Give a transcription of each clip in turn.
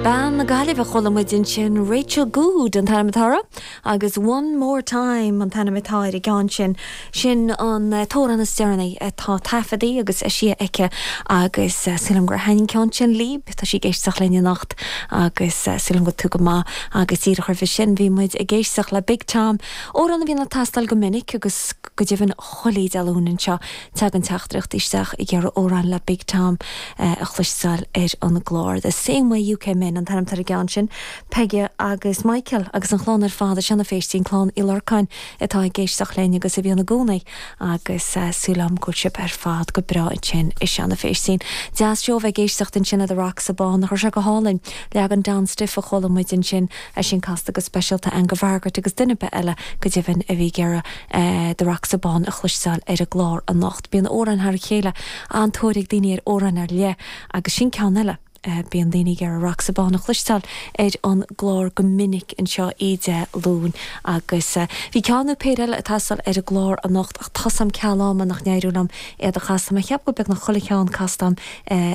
Bean na Gaillimhe, chuala muid ansin Rachel Goode an t-ainm atá uirthi agus One More Time an t-ainm atá ar an gceann sin. Sin an t-amhrán is deireanaí atá taifeadtaí agus eisithe aici agus súil agam gur thaithin an ceann sin líb. Tá sí ag éisteacht linn anocht agus súil agam go bhfuil tú go maith. Agus díreach roimhe sin bhí muid ag éisteacht le Big Tom, amhrán a bhíonn ag teastáil go minic agus go deimhin chuile Dé Luain anseo Tagann teachtaireachtaí isteach ag iarraidh amhráin le Big Tom a chloisteáil ar an gclár. The Same Way You Came In an t-ainm atá ar an gceann sin. Peige agus Michael agus an chlann ar fad, i Seanadh Phéistín, clann Uí Lorcáin, atá ag éisteacht linn agus a bhíonn i gcónaí agus súil agam go bhfuil sibh ar fad go breá ansin i Seanadh Phéistín. Deas seó a bheith ag éisteacht ansin le The Rocks of Bawn agus é go hálainn. Leagan Don Stiff a chuala muid ansin, é sin casta go speisialta agam go Mhargaret agus duine ar bith eile go deimhin a bhí ag iarraidh The Rocks of Bawn a chloisteáil ar an gclár anocht. Bíonn amhráin thar a chéile, an-tóir ag daoine ar amhráin ar leith agus sin ceann eile. Bíonn daoine ag iarraidh Rocks of Bawn a chloisteáil ar an gclár go minic anseo Dé Luain agus bhí ceann nó péire eile ag teastáil ar an gclár anocht ach tá a fhios agam ceal ama nach n-éireoidh liom iad a chasadh. Tá mé ag ceapadh go beagnach chuile cheann casta agam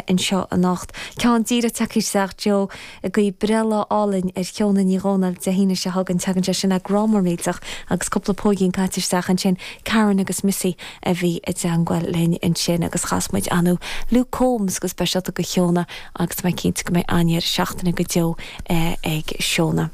anseo anocht. Ceann díreach tagtha isteach anseo. ag guí breithlá álainn ar Sheona Ní Dhomhnaill Dé hAoine seo chugainn. Tagann sé sin le grá mór millteach agus cúpla póigín caite isteach ansin. Karen agus Missy a bhí i dteangmháil linn ansin agus chas muid ar ndóigh Luke Combs go speisialta go Sheona agus tá mé cinnte go mbeidh an-deireadh seachtaine go deo ag Sheona.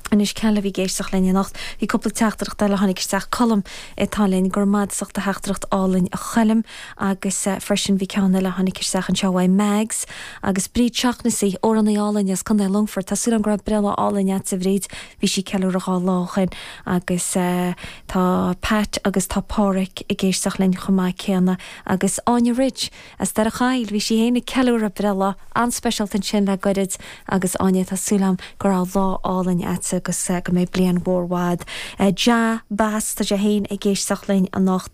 Anois cé eile a bhí ag éisteacht linn anocht, bhí cúpla teachtaireacht eile a tháinig isteach. Colm atá linn, go raibh maith agat as do theachtaireacht álainn a Choilm. Agus freisin bhí ceann eile a tháinig isteach anseo uaidh Mags agus Bríd Shaughnessy, amhránaí álainn as Contae Longfort. Tá súil agam go raibh breithlá álainn agatsa a Bhríd, bhí sí ag ceiliúradh dhá lá ó shin. Agus tá Pat agus tá Páraic ag éisteacht linn chomh maith céanna. Agus Áine Ridge as Doire Choill, bhí sí féin ag ceiliúradh breithlá an-speisialta ansin le goirid. Agus Áine tá súil agam go raibh lá álainn agatsa agus go mbeidh bliain mhór mhaith agat. Jah Bass, tá sé féin ag éisteacht linn anocht.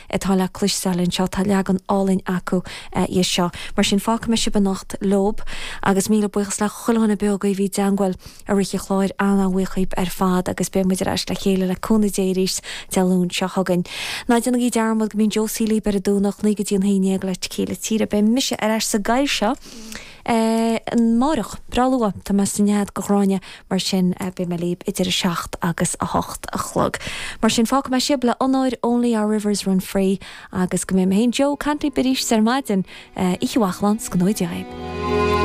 atá le cloisteáil anseo. Tá leagan álainn acu dhe seo. Mar sin, fágfaidh mé sibh anocht leob. Agus míle buíochas le chuile dhuine beo agaibh a bhí i dteangmháil i rith an chláir. An-an-bhuíoch dhaoib ar fad agus beidh muid ar ais le chéile le cúnamh Dé arís Dé Luain seo chugainn. Ná déanaigí dearmad go mbíonn Josie libh ar an Domhnach, naoi go dtí an haon dhéag le Céilí Tíre. Beidh mise ar ais sa gcathaoir seo! É amáireach, breá luath, tá mé san ionad go Ghráinne, mar sin beidh mé libh idir a seacht agus a hocht a chlog. Mar sin, fágfaidh mé sibh le Onóir Only Our Rivers Run Free agus go mbeidh mé anseo ag caint libh arís ar maidin. Oíche mhaith, slán is go ngnóthaí Dia dhaoib.